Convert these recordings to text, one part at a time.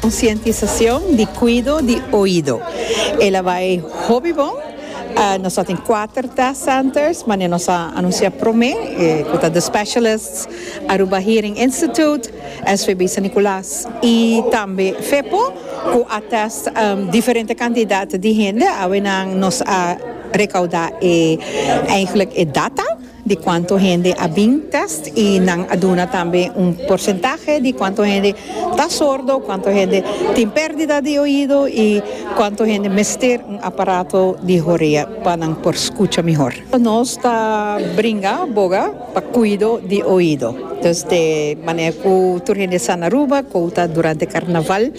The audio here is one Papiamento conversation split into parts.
Konsientisacion di cuido di oido e la bai hopi bon. Nos ta tin cuater test centers manera nos a anuncia prome cu ta The Specialists, Aruba Hearing Institute, SVB San Nicolas y tambe Fepo cu a test diferente cantidad di hende awe nan nos a recauda e eigenlijk e data. di cuanto hende a bin test y nan a duna tambe un porcentahe di cuanto hende ta sordo, cuanto hende tin perdida di oido y cuanto hende mester un aparato di horea pa nan por scucha mihor. Nos ta bringa boga pa cuido di oido. Desde manera cu tur hende sa na Aruba, cota durante carnaval.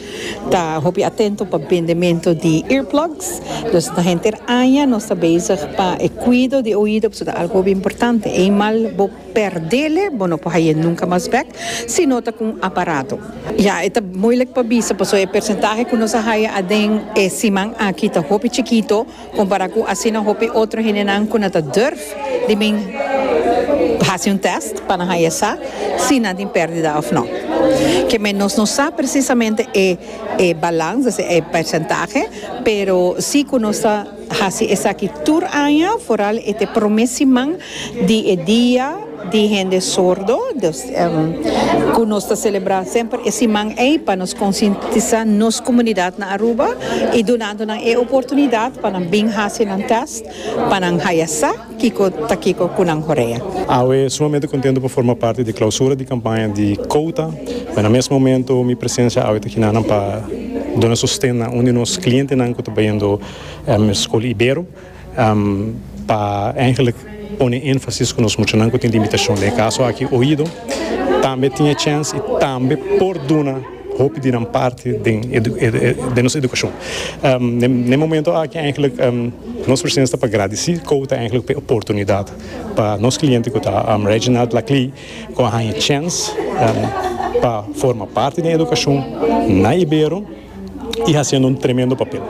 Ta hopi atento pa bendemento di earplugs. Nos ta henter aña nos ta bezig pa e cuido di oido pasobra ta algo hopi importante. Eimal bo perdele bo no por haye nunca mas bek si no ta cu un aparato. Ya e ta moeilijk pa bisa pasobra e percentahe cu nos a haya aden e siman aki ta hopi chikito. Compará cu asina hopi otro hendenan cu nan ta durf di bin haci un test pa nan haya sa si nan tin perdida of no. Kemey nos no sa precisamente e e balans, es e percentahe, pero si cu nos ta haci esaki tur aña, foral e te prome siman di e dia. di hende sordo dus ku nos ta selebrá semper e siman ei pa nos konsientisá nos komunidat na Aruba i dunando nan e oportunidat pa nan bin hasi nan tèst pa nan haya sa kiko ta kiko ku nan horea. Awe sumamente kontento pa forma parti di klausura di kampaña di Kouta, pero na mes momento mi presensia awe ta kina nan pa duna sosten na un di nos klientenan ku ta bayendo Skol Ibero. pa eigenlik pone enfasis ku nos muchanan ku tin limitashon den e kaso aki oido tambe tin e chèns i tambe por duna hopi di nan parti den den nos edukashon. Den e momento aki eigenlik nos presidente ta pa gradisí Kouta eigenlik pa e oportunidat pa nos kliente ku ta Reginald Laclii ku a haña chèns pa forma parti den edukashon na Ibero. i hasiendo un tremendo papel.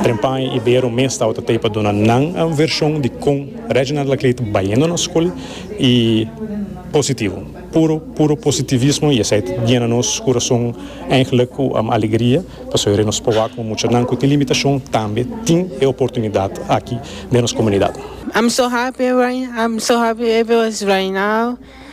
Trempan i Bero mes tabata t'ei pa duna nan a un vershon di kon Reginald Laclait bayendo nos skol i positivo, puro puro positivismo i esei ta yena nos kurason eindelijk ku alegria pasobra nos proba ku muchanan ku tin limitashon tambe tin e oportunidat aki den nos komunidat. I'm so happy right now I'm so happy everywhere is right now.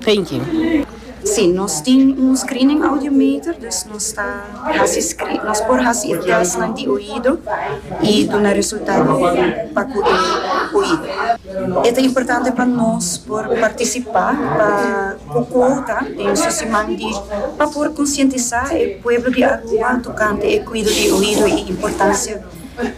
Thank you. Sí, nos tin un screening audiometer, dus nos ta hasi scree, nos por hasi e testnan di oido i duna resultado pa ku e oido. E ta importante pa nos por partisipá pa ku kouta den su siman di pa por konsientisá e pueblo di Aruba tokante e kuido di oido i importansia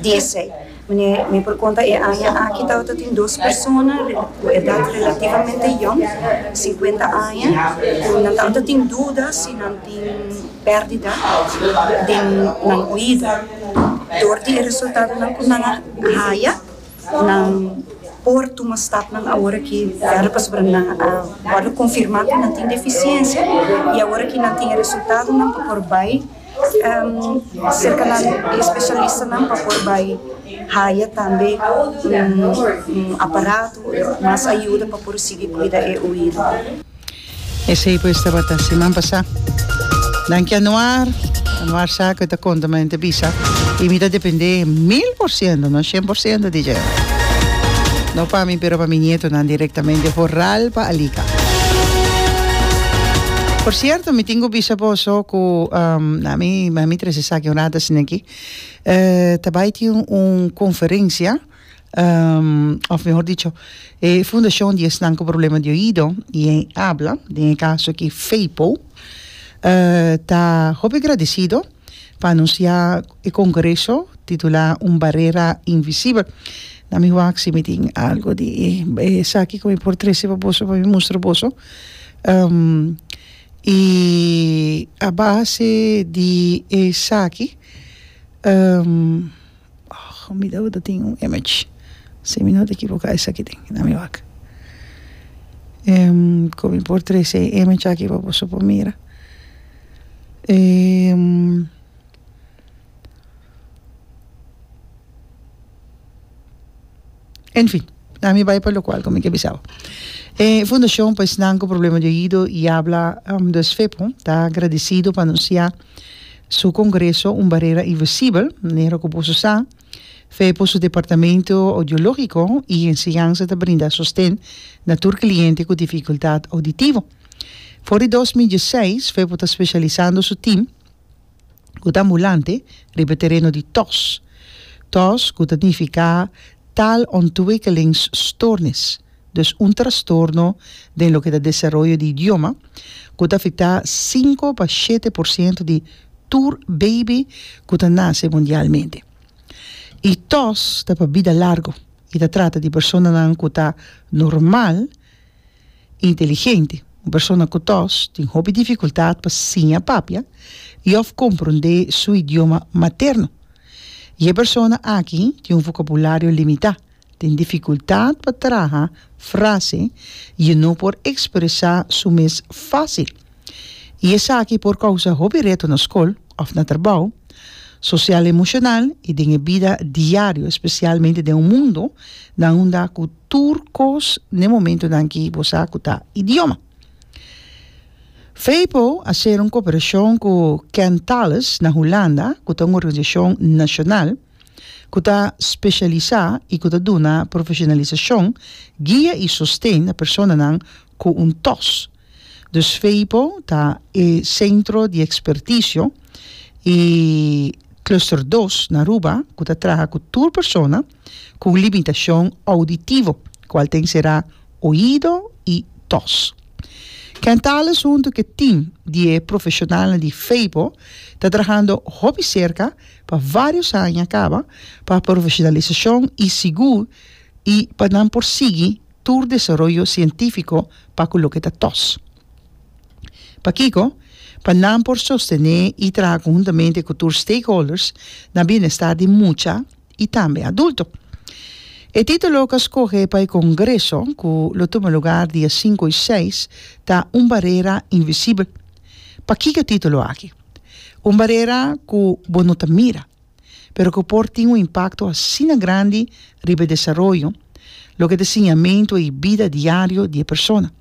di esei. Mane mi por konta e aña aki tabata tin dos persona ku edat relativamente yong, sinkuenta aña, ku nan tabata tin duda si nan tin pèrdida den nan oido. Dor di e resultadonan ku nan a haya, nan por tuma stapnan awor aki wèrdad, pasobra nan a wòrdu konfirmá ku nan tin defisiensia i awor aki nan tin e resultadonan pa por bai serka nan di e spesialistanan pa por bai haya tambe un aparato o mas ayuda pa por sigui kuida e oido. Esei pues tabata siman pasá. Danki Anuar, Anuar sa ku e ta konta ma hende bisa i mi ta dependé mil por siento, no shen por siento di dje. No pa mi pero pa mi nietonan direktamente Horal pa Alika. Por cierto mi tin cu bisa boso cu na mi na mi tres esaki un rato asina aki ta bay tin un conferencia of mehor dicho e fundacion di esnan cu problema di oido y hen habla den e caso aki Feipo ta hopi gradecido pa anunsiá e kongreso titulá Un barera invisibel. Na mi wak si mi tin algu di esaki ku mi por trese pa boso pa mi mustra boso. i a base di esaki mi tabata ta tin un image si mi no ta ekiboká esaki tin na mi wak ku mi por trese e image aki pa boso por mira. en fin la mi bai pa lo cual como mi ke bisa awe e fundacion pa esnan cu problema di oido y habla ta agradecido pa anuncia su congreso un barrera invisibel manera cu boso sa fepo su departamento audiologico y enseñanza ta brinda sosten na tur cliente cu dificultad auditivo. For di dos mil dieseis, Fepo ta specialisando su team, cu ta ambulante, riba e tereno di tos. Tos cu ta nifica taalontwikkelingstoornis, dus un trastorno den loke ta desaroyo di idioma, cu ta afecta cinco pa shete por ciento di tur baby cu ta nace mundialmente. Y tos ta pa bida largo y ta trata di personanan cu ta normal Inteligente, Un persona ku ta tin hopi difikultat pa siña papia i òf komprondé su idioma materno. E persona aki tin un vokabulario limitá, tin difikultat pa traha frase i no por ekspresá su mes fásil. I esaki por kousa hopi reto na skol òf na trabou, sosial emoshonal i den e bida diario, spesialmente den un mundu na unda ku tur kos n'e momentunan ki bo sa ku ta idioma. Vpo a ser un koperashon ku Kentalis na Hulanda, ku ta un organisashon nashonal ku ta speshalisá i ku ta duna profeshonalisashon, guia i sosten na personanan ku un tòs. Dus Vpo ta e sentro di ekspertisio i cluster dos na Aruba ku ta traha ku tur persona, cu un limitacion auditivo, cual ta encera oido y tos. Ken Tales hunto cu e team di e profesionalnan di Feibo ta trahando hopi cerca pa varios aña caba pa profesionalisacion y sigur y pa nan por sigui tur desaroyo cientifico pa cu loke ta tos. Pakico? Pa nan por sostene y traha conhuntamente cu tur stakeholders na bienestar di mucha, i tambe adulto. E título ku a skohe pa e kongreso ku lo tuma lugar dia sinku i seis ta Un barera invisibel. Pakiko e título aki? Un barera ku bo no ta mira, pero ku por tin un impakto asina grandi riba e desaroyo, loke ta e siñamentu i bida diario di e persona.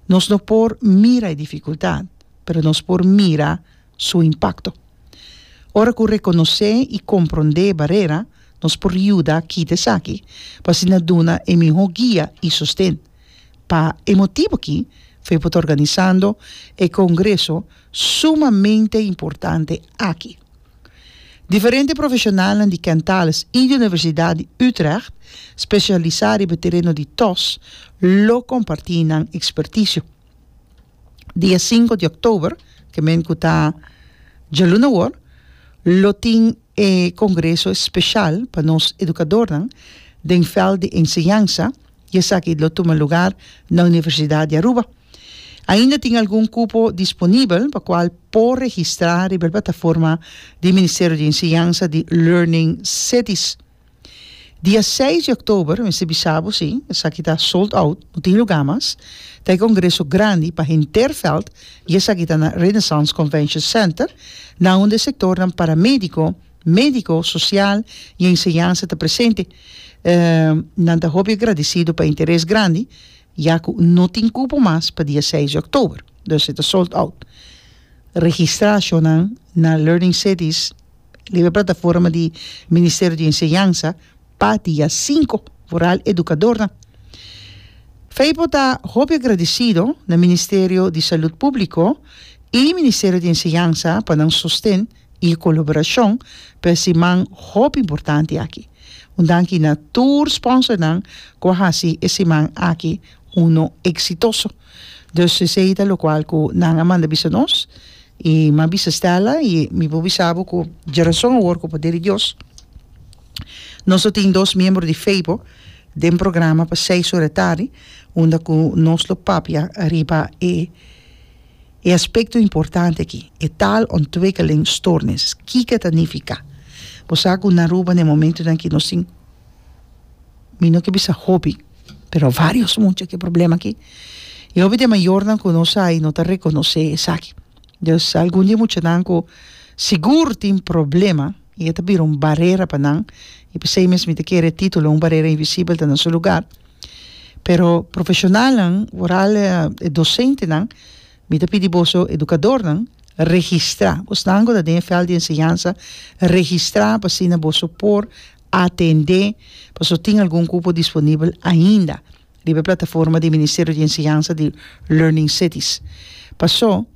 Nos no por mira e difikultat, pero nos por mira su impakto. Ora ku rekonosé i komprondé e barera, nos por yuda kita esaki pa asina ta duna e mihó guia i sosten. Pa e motibu akí, Fepho ta organisando e kongreso sumamente importante aki. Diferente profeshonalnan di Kentales i di Universidat di Utrecht, spesialisá riba e tereno di tos, lo kompartí nan ekspertisio. dia sinku di oktober, ke men ku ta djaluna awor, lo tin e kongreso espeshal pa nos edukadornan den vèlt di enseñansa i esaki lo tuma lugar na Universidat di Aruba. Ainda tin algun kupo disponibel pa kual por registrá riba e plataforma di Ministerio di Enseñansa di Learning Cities. Dia seis di Oktober, mester bisa bo si, esaki ta sold out, no tin lugá mas, ta e kongreso grandi pa henter vèlt i esaki ta na Renaissance Convention Center, na unda e sektornan paramédiko, médiko, sosial i enseñansa ta presente. Nan ta hopi agradesido pa e interes grandi, ya ku no tin kupo mas pa dia seis di Oktober, dus e ta sold out. Registra shonnan na Learning Cities. Liber Plataforma di Ministerio di Enseñansa pa dia sinku foral edukadornan. Feipo ta hopi agradisido na Ministerio di Salud Públiko i Ministerio di Enseñansa pa nan sosten i koloborashon pa e siman hopi importante aki. Un danki na tur sponsornan ku a hasi e siman aki uno eksitoso. Dus esei ta lokual ku nan a manda bisa nos, i m'a bisa Stella, i mi por bisa bo ku djarason awor ku poder di Dios nos lo tin dos miembro di Feibo den programa pa seis ora e tardi unda ku nos lo papia riba e e aspekto importante aki, e taalontwikkelingstoornis. Kiko ta nifiká? Bo sa ku na Aruba na e momentunan aki nos tin. mi no ke bisa hopi pero varios mucha ke problema aki y hopi de mayornan ku nos a y no ta rekonosé esaki dus algun di e muchanan ku sigur tin problema y e ta bira un barera pa nan y p'esei mes mi ta kere e titulo un barera invisibel ta na su lugar pero profeshonalnan foral e dosentenan mi ta pidi boso edukadornan registra bonan ku ta den e vèl di enseñansa registra pa asina boso por atendé pasobra tin algun kupo disponibel ainda riba e plataforma di Ministerio di Enseñansa di Learning Cities. Paso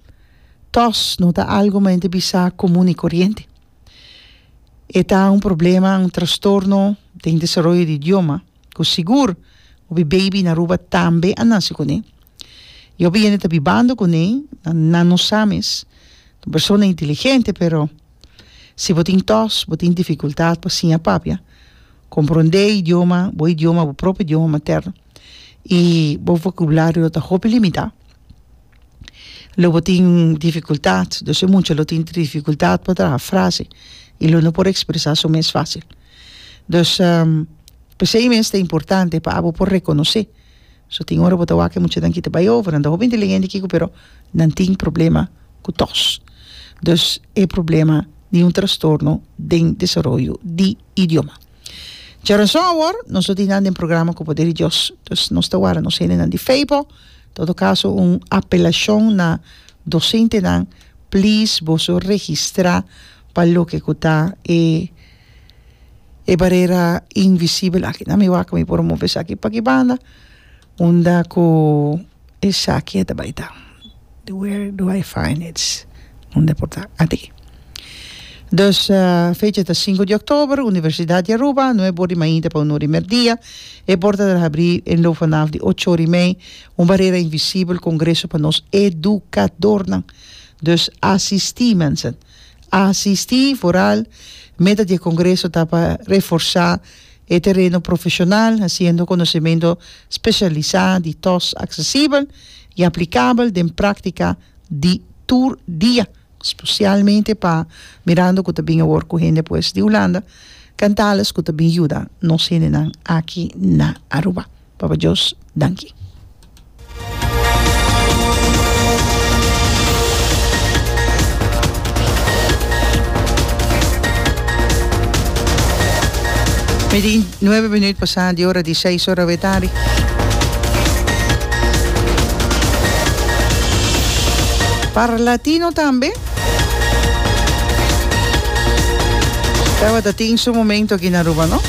tòs no ta algu mente bisa komun i koriente. E ta un problema, un trastorno den desaroyo di idioma ku sigur hopi beibi na Aruba tambe a nase kuné. I hopi hende ta bibando kuné, nan no sa mes. Ta un persona inteligente pero. Si bo tin tòs, bo tin difikultat pa siña papia, komprondé e idioma, bo idioma, bo propio idioma materno, i bo vokabulario lo ta hopi limitá, lo bo tin difikultat, dos e mucha lo tin difikultat pa traha frase i lo no por ekspresá su mes fásil. Dus, p'esei mes ta importante pa abo por rekonosé So tin ora bo ta wak e muchanan kita bai over, nan ta hopi inteligente kiko pero nan tin problema ku tos, dus e problema di un trastorno den desaroyo di idioma. Djarason awor nos lo tin nan den programa ku poder di Dios, dus nos ta wara nos hendenan di fe bo, todo kaso un apelashon na dosentenan please boso registra pa loke ku ta e. e barera invisibel aki nan mi wak mi por move esaki paki banda unda ku esaki a tabay ta where do I find it unda por ta aki dus fecha ta sinku di october universidad di Aruba nuebe or di mainta pa un or di merdia e porta ta habri e lo vanaf di ocho or y mei un barera invisibel congreso pa nos educadornan dus asisti mensen a asistí foral. Meta di e kongreso ta pa reforsá e tereno profeshonal hasiendo konosementu spesialisá di tòs aksesibel i aplikabel den práktika di tur dia, spesialmente pa mirando ku ta bin awor ku hende pues di Hulanda kantales ku ta bin yuda nos hendenan aki na Aruba. Papa Dios danki. Mi di nuebe minüt pasá di ora di seis ora awé tardi. Parlatino tambe tabata tin su momento aki na Aruba, no?